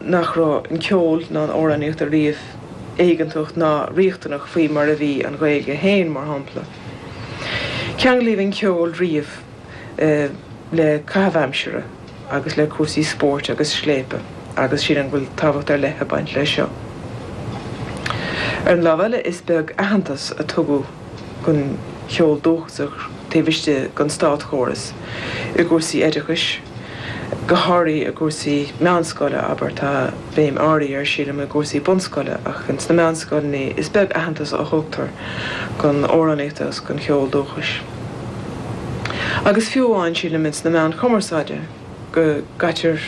nach raibh an ceol ná an amhránaíocht ariamh éigeantach ná riachtanach faoi mar a bhí an Ghaeilge féin, mar shampla. Ceanglaíodh an ceol riamh le caitheamh aimsire agus le cúrsaí spóirt agus scléipe agus sílim go bhfuil tábhacht ar leith ag baint leis seo. Ar an lámh eile, is beag aitheantas a tugadh. don cheol dúchasach taobh istigh den státchóras, i gcúrsaí oideachais, go háirithe i gcúrsaí meánscoile, abair. Tá béim áirithe air, sílim, i gcúrsaí bunscoile, ach in sna meánscoileanna is beag aitheantas a thugtar don amhránaíocht agus don cheol dúchais. Agus fiú amháin, sílim, in sna meáin chumarsáide go gcaitear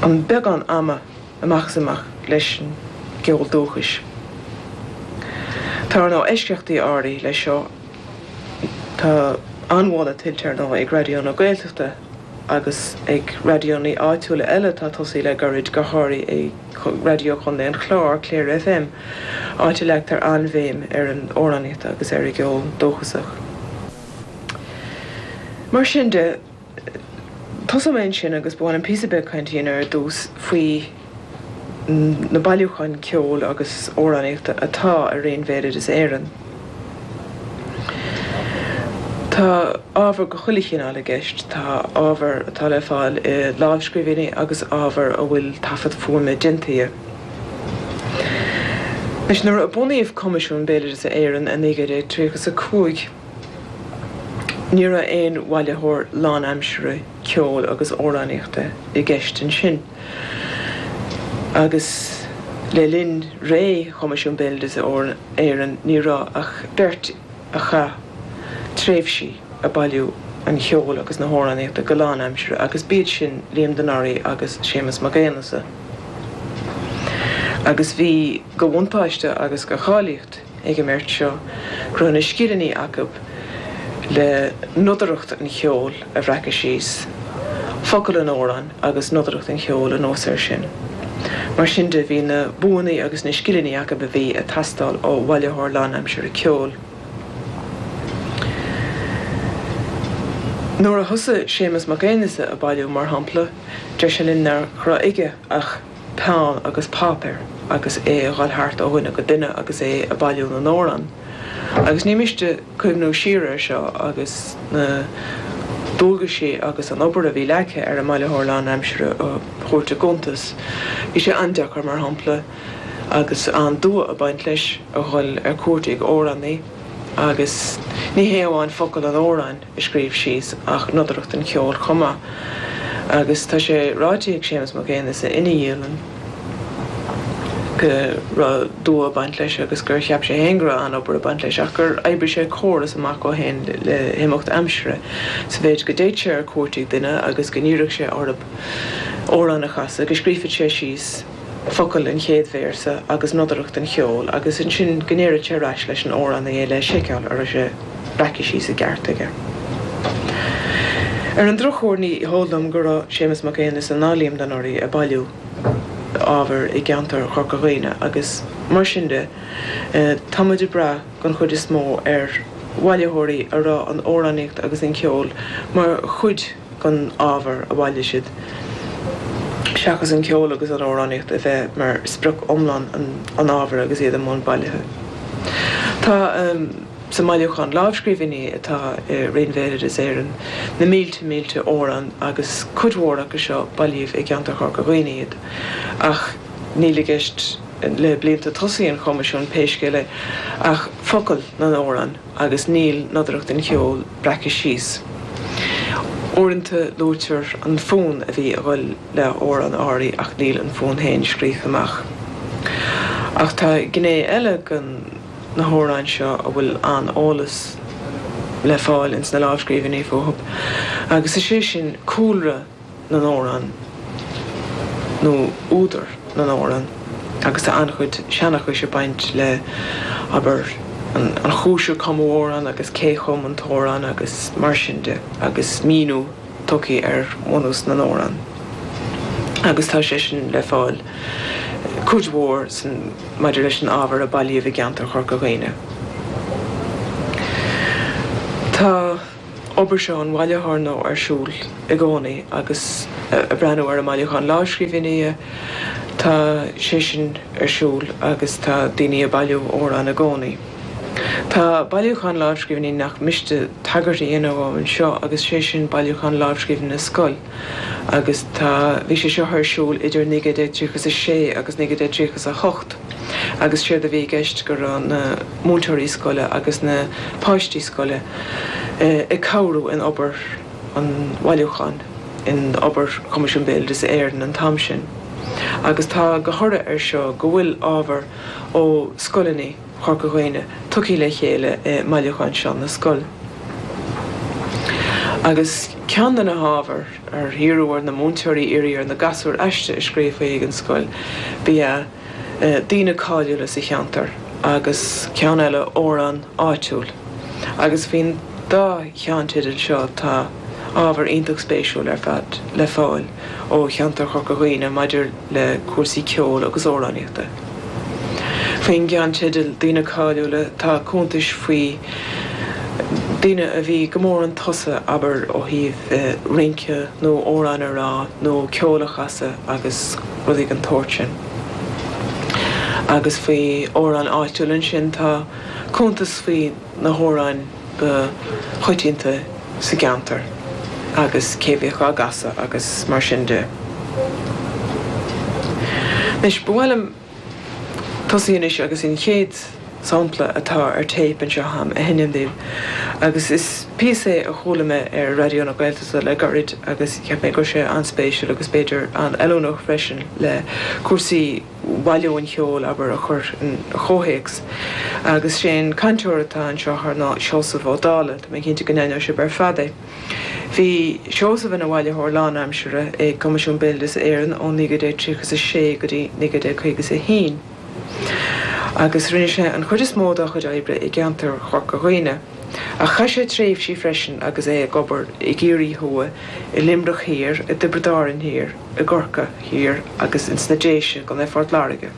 an beagán ama, amach is amach leis an gceol dúchais. Tá, ar ndóigh, eisceachtaí áirithe leis seo. Tá an-mholadh tuillte, ar ndóigh, ag Raidió na Gaeltachta agus ag raidiónna áitiúla eile atá tosaithe le gairid, go háirithe Raidió Chontae an Chláir, Clare FM, áit a leagtar an-bhéim ar an amhránaíocht agus ar an gceol dúchasach. Mar sin de. Tosóidh mé ansin agus ba mhian liom píosa beag cainte a dhéanamh ar dtús faoi na bailiúcháin ceoil agus amhránaíochta atá i Roinn Bhéaloideas Éireann. Tá ábhar de chuile chineál i gceist, tá ábhar atá le fáil i lámhscríbhinní agus ábhar a bhfuil taifead fuaime déanta dhe. Anois, nuair a bunaíodh Coimisiún Béaloideasa Éireann i 1935. Ní raibh aon bhailitheoir lánaimsire ceoil agus amhránaíochta i gceist ansin, agus le linn ré Choimisiún Béaloideasa Éireann ní raibh ach beirt a chaith tréimhsí ag bailiú an cheoil agus na hamhránaíochta go lánaimsire, agus b'iad sin Liam de Noraí agus Séamus Mac Aonghasa. Agus bhí de bhuntáiste agus de cháilíocht. ag an mbeirt seo go raibh na scileanna acu le nodaireacht an cheoil a bhreacadh síos, focail an amhráin agus nodaireacht an cheoil anuas air sin. Mar sin de, bhí na buanna agus na scileanna acu a bhí ag teastáil ó bhailitheoir lánaimsire ceoil. Nuair a thosaigh Séamus Mac Aonghasa ag bailiú, mar shampla, deir sé linn nach raibh aige ach. peann agus páipéar agus é a dhul thart ó dhuine go duine agus é ag bailiú na n-amhrán agus ní miste cuimhniú siar air seo agus na dualgaisí agus an obair a bhí leagtha ar an mbailitheoir lánaimsire a thabhairt i gcuntas. Bhí sé an-deacair, mar shampla, agus an-dua ag baint leis, a dhul ar cuairt ag amhránaí agus ní hé amháin focail an amhráin, a scríobh síos ach nodaireacht an cheoil chomh maith agus tá sé ráite ag Séamus Mac Aonghasa ina dhialann go raibh dua ag baint leis agus gur cheap sé féin go raibh an-obair ag baint leis ach gur oibrigh sé córas amach dhó féin le himeacht aimsire sa mhéid go dtéadh sé ar cuairt ag duine agus go n-iarradh sé orthu amhrán a chasadh go scríobhfadh sé síos focail an chéad véarsa agus nodaireacht an cheoil agus ansin go ndéarfadh sé ar ais leis an amhrán le seiceáil ar sé an raibh sé sa gceart aige. Ar an drochuair ní heol dom go raibh Séamus Mac Aonghasa ná Liam de Noraidh ag bailiú ábhair i gceantar Chorca Dhuibhne agus mar sin de tá muid ag brath den chuid is mó ar bhailitheoirí a raibh an amhránaíocht agus an ceol mar chuid dhon ábhar a bhailigh siad, seachas an ceol agus an amhránaíocht, a bheith mar sprioc iomlán an ábhair agus iad i mbun bailithe. Tá sa mbailiúchán lámhscríbhinní atá i Roinn Bhéaloideas Éireann na mílte mílte amhrán agus cuid mhór acu seo bailíodh i gceantar Chorca Dhuibhne iad ach níl i gceist le blianta tosaigh an Choimisiúin pé scéal é ach focail na n-amhrán agus níl nodaireacht an cheoil breactha síos. Uaireanta luaitear an fonn a bhí a dhul le hamhrán áirithe ach níl an fonn féin scríofa amach. Ach tá gné eile de na hamhráin seo a bhfuil an-eolas le fáil ins na lámhscríbhinní fúthu agus is é sin cúlra na. na n-amhrán nó údar na n-amhrán agus tá an-chuid seanchais ag baint le, abair, an chúis ar cumadh amhrán agus cé chum an t-amhrán agus mar sin de agus míniú tugtha ar bhunús na n-amhrán agus tá sé sin le fáil cuid mhór maidir leis an ábhar a bailíodh i gceantar Chorca Dhuibhne. Tá. obair seo an bhailitheora ar siúl i gcónaí agus ag breathnú ar an mbailiúchán lámhscríbhinní, tá sé sin ar siúl agus tá daoine ag bailiú amhrán i gcónaí. Tá bailiúchán lámhscríbhinní nach miste tagairt a dhéanamh dhó anseo agus sé sin bailiúchán lámhscríbhinní na scol. agus tá bhí sé seo ar siúl idir 1936 agus 1938 agus séard a bhí i gceist go raibh na múinteoirí scoile agus na páistí scoile ag cabhrú in obair an bhailiúcháin, in obair Choimisiún Bhéaloideas Éireann an t-am sin agus tá dho thoradh ar seo go bhfuil ábhar ó scoileanna. Chorca Dhuibhne tugtha le chéile i mBailiúchán Seán na Scol. Agus ceann de na hábhair ar hiarradh ar na múinteoirí iarraidh ar na gasúir aiste a scríobh faoi ag an scoil, ba ea daoine cáiliúla sa cheantar agus ceann eile amhrán áitiúil. Agus faoin dá cheannteideal seo tá ábhar iontach spéisiúil ar fad le fáil ó cheantar Chorca Dhuibhne maidir. le cúrsaí ceoil agus amhránaíochta. Faoin gceannteideal Daoine Cáiliúla tá cuntais faoi dhaoine a bhí go mór 'un tosaigh, abair, ó thaobh rince nó amhráin a rá nó ceol a chasadh agus rudaí den tsórt sin. Agus faoi amhráin áitiúla ansin tá cuntas faoi na hamhráin, ba choitianta sa gceantar agus cé a bhíodh á gcasadh agus mar sin de. Anois, ba mhaith liom tosaí agus an chéad sampla atá ar téip anseo a'm a sheinm dhaoibh agus is píosa é a chuala mé ar Raidió na Gaeltachta le gairid agus cheap mé go raibh sé an-spéisiúil agus b'fhéidir an-fheiliúnach freisin le cúrsaí bhailiú an cheoil, abair, a chur i gcomhthéacs. Agus is é an cainteoir atá anseo ar ná Seosamh Ó Dálaigh, tá mé cinnte go n-aithneoidh sibh ar fad é. Bhí Seosamh ina bhailitheoir lánaimseartha ag Coimisiún Béaloideas Éireann ó 1936 go dtí 1951 agus rinne sé an chuid is mó dá chuid oibre i gceantar Chorca Dhuibhne, ach chaith sé tréimhsí freisin agus é ag obair i gCiarraí thuaidh, i Luimneach thiar, i dTiobraid Árann thiar. i gCorcaigh Thiar agus ins na Déise i gContae Phort Láirge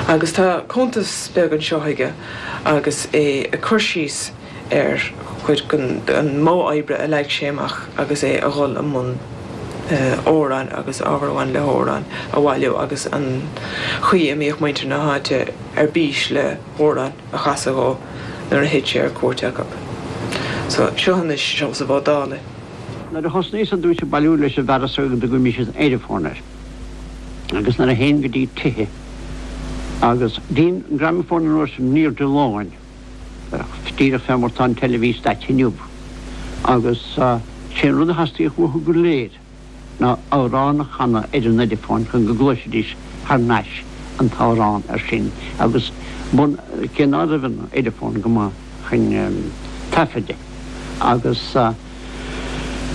agus tá cuntas beag anseo aige agus é ag cur síos ar chuid den mhodh oibre a leag sé amach agus é ag dul i mbun amhráin agus ábhar a bhain le hamhráin a bhailiú agus an chaoi a mbíodh muintir na háite ar bís le hamhráin a chasadh dhó nuair a théadh sé ar cuairt acu. Seo anois Seosamh Ó Dálaigh. Nuair a thosnaíos ar dtúis ag bailiú leis an bhfearas go dtugaimis an ediphone air, agus nuair a théinn go dtí tithe agus bhí an gramafón an uair sin in airde láin, díreach fé mar tá an teilifís daite inniu, agus sé an rud a theastaíodh uathu go léir ná amhrán a chanadh ar an ediphone chun go gcloisfidís thar nais an t-amhrán, ansan, agus bun, cé ná raibh an ediphone go maith. chun taifeadta agus an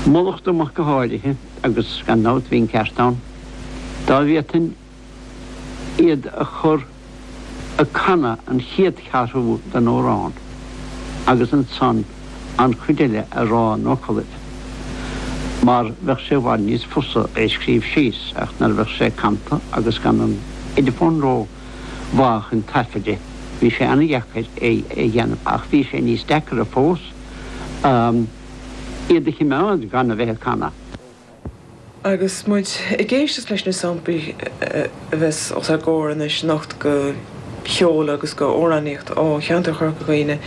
fhalach dtiúin amach go háirithe agus gan dabht bhí an ceart agam. Dá bhféadfainn iad a chur ag canadh an chéad cheathrú den amhrán agus ansan an chuid eile a rá ina focalaibh mar bheadh sé i bhfad níos fusa é scríobh síos ach nuair a bheadh sé canta agus gan an ediphone ró mhaith é chun taifeadta. Bhí sé an-deacair é a dhéanamh ach bhí sé níos deacra fós iad a chimeád gan a bheith ag canadh. Agus muid ag éisteacht leis na samplaí a bheas os ár gcomhair anois, sliocht de cheol agus de amhránaíocht ó cheantar Chorca Dhuibhne,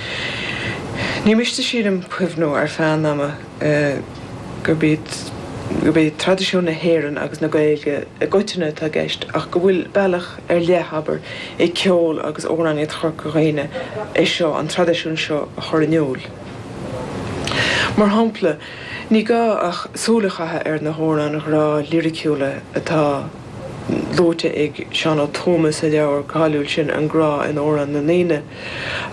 ní miste sílim cuimhniú ar feadh an ama, gurb é traidisiún na hÉireann agus na Gaeilge i gcoitinne atá i gceist ach go bhfuil bealach ar leith, abair, ag ceol agus amhránaíocht Chorca Dhuibhne é seo, an traidisiún seo a chur in iúl. Mar shampla, ní gá ach súil a chaitheamh ar na hamhráin ghrá liriciúla atá luaite ag Seán Ó Tuama sa leabhar cáiliúil sin An Grá in Amhráin na nDaoine,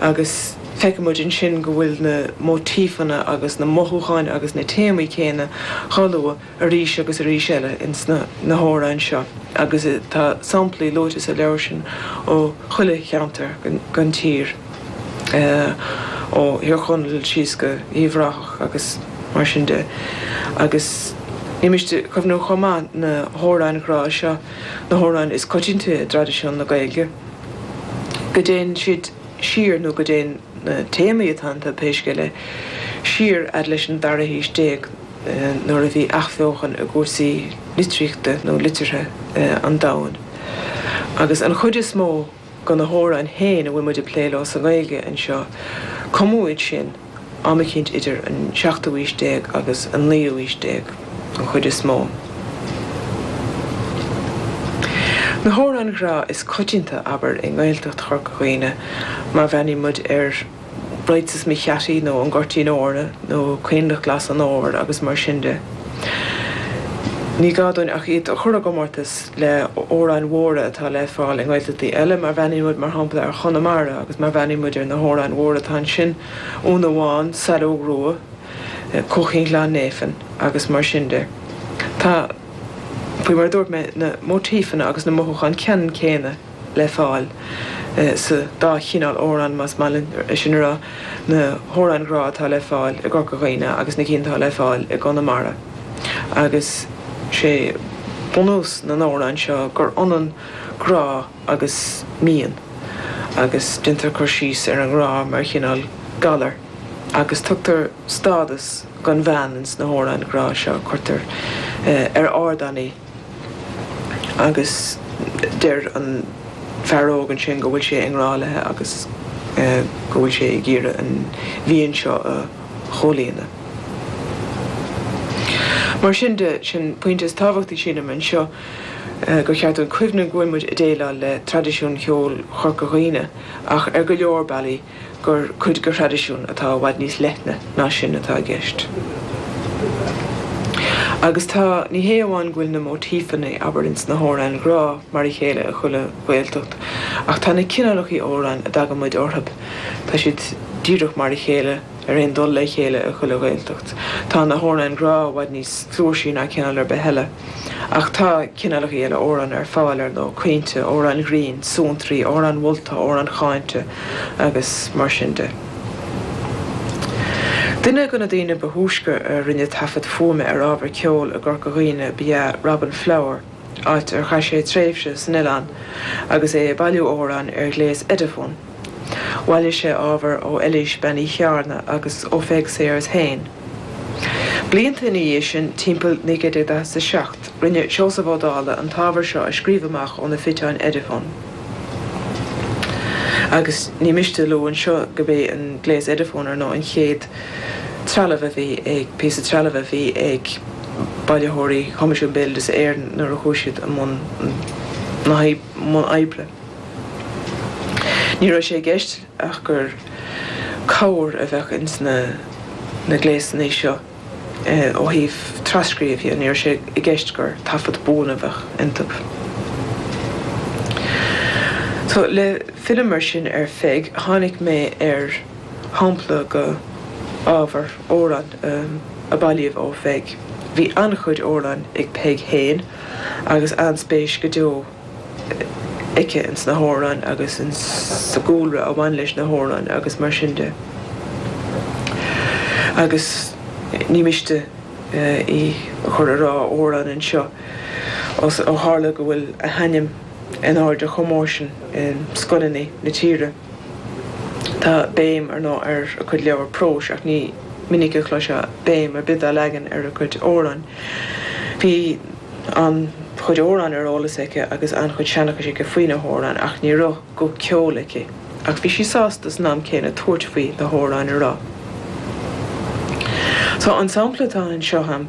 agus feicimid ansin go bhfuil na móitífeanna agus na mothúcháin agus na téamaí céanna á lua arís agus arís eile insna hamhráin seo agus tá samplaí luaite sa leabhar sin ó chuile cheantar den tír ó Thír Chonaill síos go Uíbh Ráthach agus mar sin de agus ní miste cuimhniú chomh maith na hamhráin ghrá seo na hamhráin is coitianta i dtraidisiún na Gaeilge. go dtéann siad siar nó go dtéann na téamaí atá iontu, pé scéal é, siar fhad leis an dara haois déag nuair a bhí athbheochan i gcúrsaí litríochta nó liteartha an domhain. Agus an chuid is mó de na hamhráin féin a bhfuil muid ag plé leo sa nGaeilge anseo, cumadh iad sin, am eicínt idir an seachtú aois déag agus an naoú aois déag don chuid is mó. Na hamhráin ghrá is coitianta, abair, i nGaeltacht Chorca Dhuibhne, má bhreathnaíonn muid ar Is é Mo Bhuaireamh nó An Goirtín Eornan nó Coinleach Glas an Fhómhair agus mar sin de, ní gá dúinn ach iad a chur i gcomórtas le hóráin mhóra atá le fáil i nGaeltachtaí eile, má bhreathnaíonn muid, mar shampla, ar Chonamara agus má bhreathnaíonn muid ar na hóráin mhóra atá ansin, Úna Bhán, Saileog Rua, Cuaichín Ghleann Néifinn agus mar sin de. Tá, faoi mar a dúirt mé, na móitífeanna agus na mothúcháin ceannann céanna. le fáil sa dá chineál óráin, más maith leat é sin a rá, na hóráin ghrá atá le fáil i gCorca Dhuibhne agus na cinn atá le fáil i gConamara. Agus sé bunús na n-óráin seo gur ionann grá agus mian agus déantar cur síos ar an ngrá mar chineál galair agus tugtar stádas don bhean ins na hóráin ghrá seo. Cuirtear ar ardán í. Agus deir an fear óg ansin go bhfuil sé i ngrá léi agus go bhfuil sé ag iarraidh an mhian seo a chomhlíonadh. Mar sin de, sin pointe is tábhachtaí sílim anseo go gceart dúinn cuimhneamh go bhfuil muid ag déileáil le traidisiún cheoil Chorca Dhuibhne ach ar go leor bealaí, gur cuid go thraidisiún atá i bhfad níos leithne ná sin atá i gceist. Agus tá, ní hé amháin go bhfuil na móitífeanna, abair, in sna hamhráin ghrá mar a chéile i chuile Ghaeltacht, ach tá na cineálachaí amhrán a dtagann muid orthu, tá siad díreach mar a chéile. ar aon dul le chéile i chuile Ghaeltacht. Tá na hamhráin ghrá i bhfad níos flúirsí ná cineál ar bith eile. Ach tá cineálachaí eile amhrán ar fáil, ar ndóigh, caointe, amhráin ghrinn, suantraí, amhráin mholta, amhráin cháinte agus mar sin de. Duine go na daoine ba thúisce a rinne taifead fuaime ar ábhar ceoil i gCorca Dhuibhne ba ea Robin Flower, áit ar chaith sé tréimhse san oileán agus é ag bailiú amhrán ar ghléas Ediphone. Bhailigh sé ábhar ó Eilís Bean Uí Cheárna agus ó Pheig Sayers féin. Blianta ina dhiaidh sin, timpeall 1947, rinne Seosamh Ó Dálaigh an t-ábhar seo a scríobh amach ó na fiteáin Ediphone, agus ní miste a lua anseo gurb é an gléas Ediphone, ar ndóigh, an chéad. trealamh a bhí ag píosa trealaimh a bhí ag bailitheoirí Choimisiún Béaloideasa Éireann nuair a chuaigh siad i mbun na mbun oibre. Ní raibh sé i gceist ach gur cabhair a bheadh ins na na gléasanna seo ó thaobh tras-scríobh dhe, ní raibh sé i gceist gur taifead buan a bheadh iontab. So le filleadh mar sin ar Pheig, tháinig mé ar. shampla go ábhar amhráin a bailíodh ó Pheig. Bhí an-chuid amhráin ag Peig féin agus an-spéis go deo aici ins na hamhráin agus ins sa gcúlra a bhain leis na hamhráin agus mar sin de agus ní miste í a chur ag rá amhrán anseo ó tharla go bhfuil a hainm in airde chomh mór sin i scoileanna na tíre. Tá béim ar ndóigh ar a cuid leabhar próis ach ní minic a chloisfeá béim ar bith á leagan ar a cuid amhráin. Bhí an-chuid amhráin ar eolas aici agus an-chuid seanchais aici faoi na hamhráin ach ní raibh guth ceoil aici. Ach bhí sí sásta san am céanna tabhairt faoi na hamhráin a rá. So an sampla atá anseo a'm,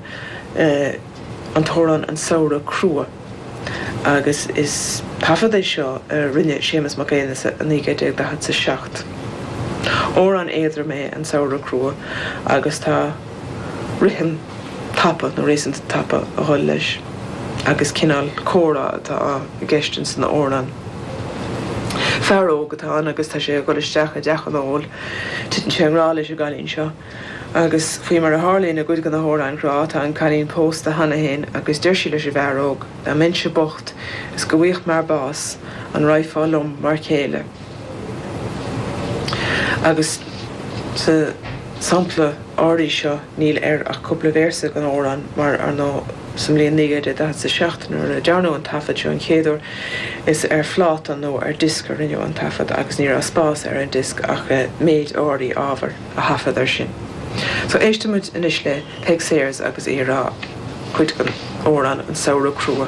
an t-amhrán An Samhradh Crua. agus is taifead é seo a rinne Séamus Mac Aonghus i 1947. Amhrán éadrom é an Samhradh Crua agus tá rithim tapa nó réasúnta tapa a dhul leis agus cineál comhrá atá i gceist ins an amhrán. Fear óg atá ann agus tá sé ag dhul isteach i dteach an óil. Titeann sé i ngrá leis an gcailín seo. Agus, faoi mar a tharlaíonn i gcuid de na hamhráin ghrá, tá an cailín pósta cheana féin agus deir sí leis an bhfear óg, Dá mbeinnse bocht is go bhfaighfeadh m'fhear bás, an raghfá liom mar chéile? Agus sa sampla áirí seo níl ann ach cúpla véarsa den amhrán mar ar ndóigh sa mbliain 1947 nuair a dearnadh an taifead seo an chéad uair is ar phláta nó ar diosc a rinneadh an taifead agus ní raibh spás ar an diosc ach méid áirí ábhair. a thaifead air sin. So, éistimid anois le Peig Sayers agus í ag rá cuid den amhrán An Samhradh Crua.